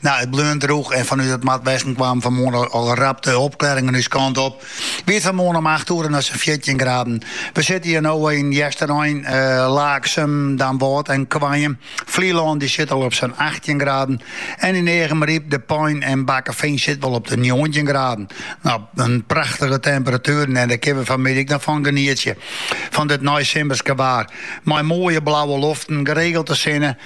Nou, it bleun droech en fanút it noardwesten kwamen fanmoarn al rap de opklaringen ús kant op. Wie it fanmoarn om acht oere noch sa'n fjirtjin graden. We sitte hjir no yn Easterein, eh, Laaksum, Damwâld en Goaium. Flylân dy sit al op sa'n achttjin graden en yn Eagmaryp, De Pein en Bakkefean sitte we al op de njoggentjin graden. Nou, en prachtige temperatueren en dêr kinne we fanmiddei ek noch fan genietsje. Fan dit neisimmerske waar. Mei moaie blauwe loften, geregelte sinne,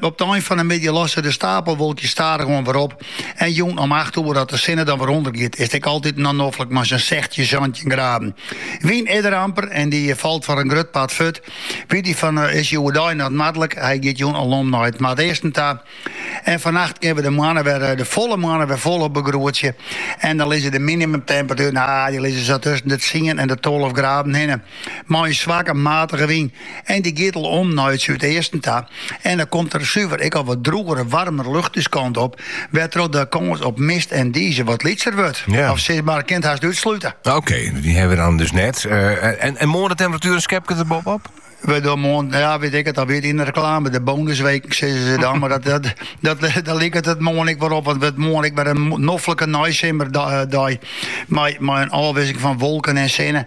Op de ein fan de middei losse de stapelwolkjes stadichoan wer op en jûn om acht oere as de sinne dan wer ûndergiet is it ek altyd noch noflik mei sa'n sechstjin, santjin graden. Wyn is der amper en dy falt foar in grut part fuort. Wie dy fan, is dy oerdei noch noardlik, hy giet jûn al om nei it noardeasten ta en fannacht kinne we de moanne wer, de folle moanne wer folop begroetsje en dan lizze de minimumtemperatueren, ah dy lizze sa tusken de tsien en de tolve graden hinne. Mei in swakke matige wyn en dy giet al om nei it súdeasten ta en dan komt der suver ek al wat drûgere warmer lucht ús kant op, wêrtroch't de kâns op mist en dize wat lytser wurdt. Ja. Of sis mar, kint hast útslute. Oké, die hebben we dan dus net. Eh, en, en morgen de temperatuur een schepje er bovenop? We doen morgen, ja, weet ik het alweer in de reclame, de bonusweek, zeggen ze dan. Maar dat, dat, dat, dat ligt het het morgen ik weer op. Want het morgen ik weer een noffelijke nijsimmer eh, dag. Maar, maar een afwisseling van wolken en zinnen.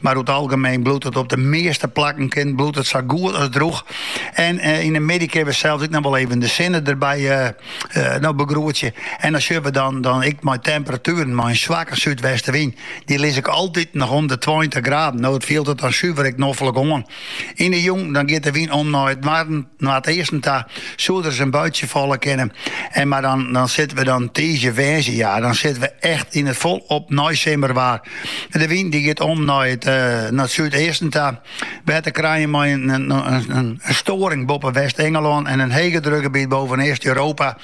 Mar oer it algemeen bliuwt it op de measte plakken kin, bliuwt it sa goed as droech. En eh, yn de middei kinne we sels ek noch wol even de sinne derby eh, eh, no begroetsje. En dan sjogge we dan, dan ek mei temperatueren, mei in swakke súdwestewyn. Dy lizze ek altyd noch om de 20 graden. No, it fielt it dan suver ek noflik oan. Yn de jûn dan giet de wyn om nei it noarden, noardeasten ta, soe der ris in buitsje falle kinne. En mar dan, dan sitte we dan tiisdei, woansdei, ja, dan sitte we echt yn it folop neisimmerwaar. De wyn dy giet om nei it, uh, nei it súdeasten ta, we ha te krijen mei in, in, in, in storing boppe West-Engelân en in hegedrukgebiet boven East-Europa.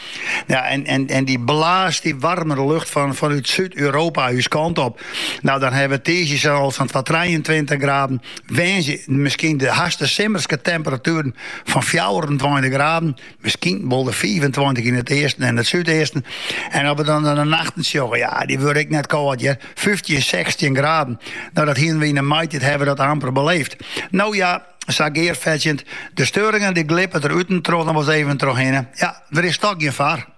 Ja, en, en, en dy blaast dy waarmere lucht fan, fanút Súd-Europa ús kant op. No, dan hawwe we tiisdei sels sa'n twa-, 23 graden, Woansdei miskien de haast simmerske temperatueren fan fjouwerentweintich graden, miskien wol de fiifentweintich yn it easten en it súdeasten. En as we dan de nachten sjogge, ja, dy wurde ek net kâld hear, fyftjin, sechstjin graden. No, dat hienen we yn de maitiid hawwe we dat amper beleefd. No ja, sa gearfetsjend, de steuringen dy glippe der út en troch noch wol ris even troch hinne. Ja, der is toch gjin foar.